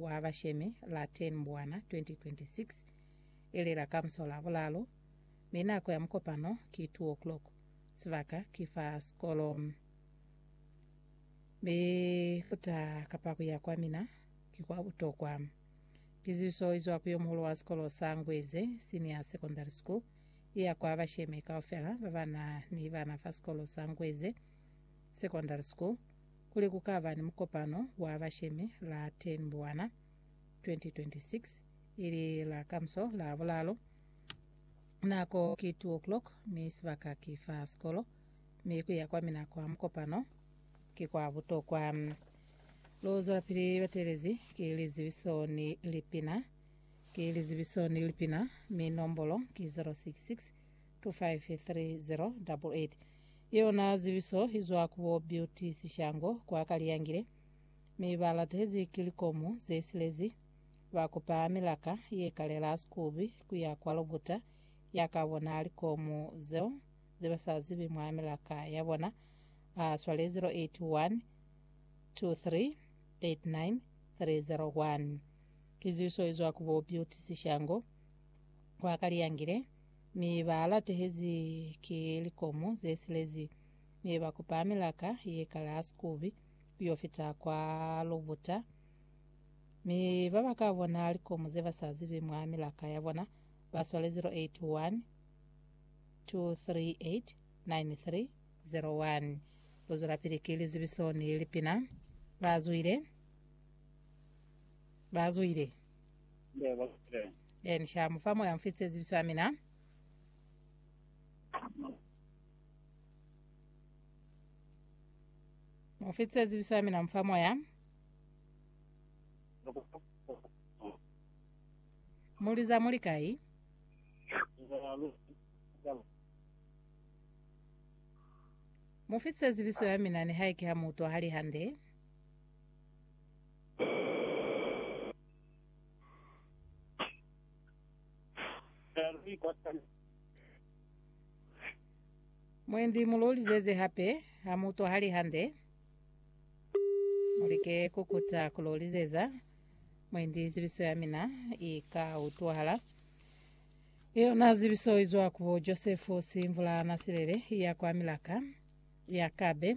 wa bashemi la 10 Mbwana 2026 ilela ka muso la bulalu, mi nako ya mukopano ki 2 o'clock, sibaka ki fa sikolo. Mi kuta kapa kuya kwa mina ki kwa butokwa. Kizibiso izwa ku yomuhulu wa sikolo sa Ngweze Senior Secondary School iya kwa bashemi kaufela babana ni bana fa sikolo sa Ngweze Secondary School, Kuli ku ka ba ni mukopano wa bashemi la 10 Mbwana 2026, ili la kamuso la Bulalu. Nako ki 2 o'clock mi sibaka ki fa sikolo, mi ku ya kwa mina kwa mukopano ki kwa butokwa. Lu zwelapili bateelezi ki lizibiso ni lipina. Ki lizibiso ni lipina, mi nombolo ki 066 2530888 Yona zibiso izwa ku bo Beauty Sishango kwa Kaliyangile mi ba latezi ki likomu ze silezi, ba kupa milaka ye kalela Sikubi ku ya kwa Lobuta ya ka bona likomu zeo ze ba sa zibi mwa milaka ya bona, a swalezi 0812389301. Ki zibiso izwa ku bo Beauty Sishango kwa Kaliyangile. Mi ba latehezi ki likomu ze silezi, mi ba kupa milaka ye kale ha sikubi, yo fita kwa lubuta. Mi ba ba ka bona likomu ze ba sa zibi mwa milaka ya bona, ba swale 081 238 93 01. Lu zwelapili ki lizibiso ni lipina. Ba zwile, ba zwile. Ee, ni sha mu fa moya mufi tsezibiso ya mina. Mufi tsezibiso ya mina, mu fa moya. Muliza muli kai? Mufi tsezibiso ya mina nihaike ha mu utwahali hande. Mwendi mu lolizeze hape ha mu utwahali hande. Mu like ku kuta ku lolizeza. Mwendi zibiso ya mina i ka utwahala. I yona zibiso i zwa ku bo Josefu Simvula Nasilele ya kwa Milaka, Yakabe.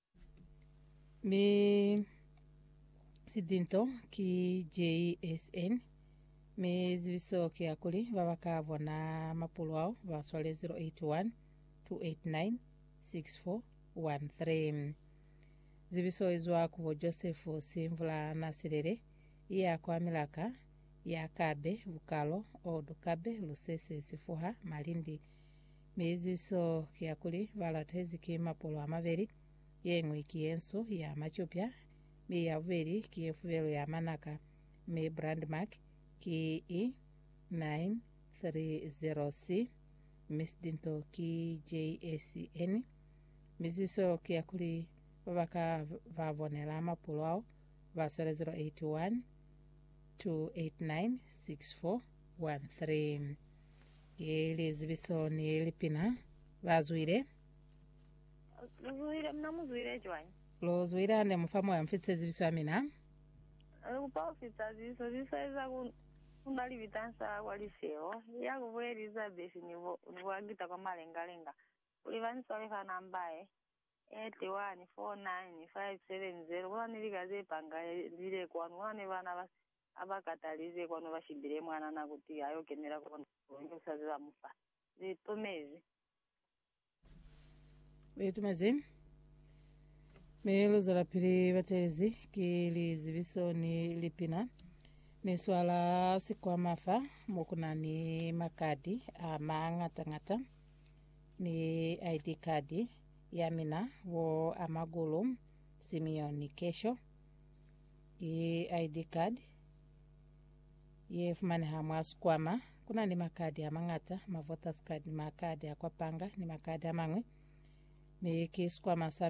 Mi sidinto ki JSN, mi zibiso ki ya kuli ba ba ka bona mapulo ao ba swale 081 289 6413. Zibiso i zwa ku bo Joseph Simvula Nasilele, i ya kwa Milaka, ya Kabe, Bukalo, Old Kabe, Lusese, Sifuha, Malindi, Mi eziso ki ya kuli, ba latezi ki mapolo a mabeli, ye ñwi ki ye nsu, ya macupya, mi ya bubeli ki ye fubelu ya manaka, mi brandmark ki i 930C, mi sidinto ki JACN. Mi ziso ki ya kuli, ba ba ka ba bonela mapolo ao, ba swela 081 289 6413. Ki lizibiso ni lipina ba zwile. Lu zwile, mina mu zwile cwañi? Lu zwile hande mu fa moya mu fitise zibiso ya mina. Lu kupa ku fitisa zibiso, zibiso ye za ku ku na libita nsa kwa lifeho, ya ku bu Elizabeth ni bo ni bo Agita kwa malengalenga, kuli ba ni swale fa namba ye, 81 49570, ku na ni lika ze panga ye lile kwanu, ku na ni bana ba Ha ba katalize kwanu ba shibile mwanana kuti a yo kenela kona, Mulimu ki usazi ba mu fa. Li itumezi. Li itumezi. Mi lu zwelapili batelezi ki lizibiso ni lipina. Ni swala sikwama fa mo ku na ni makadi a mañata-ñata ni ID card ya mina, bo Amagulu Simeon Kesho, Ki ID card ye fumaneha mwa sikwama. Ku na ni makadi a mañata, ma voters card, makadi a kwa panga ni makadi a mañwi. Mi ki sikwama sa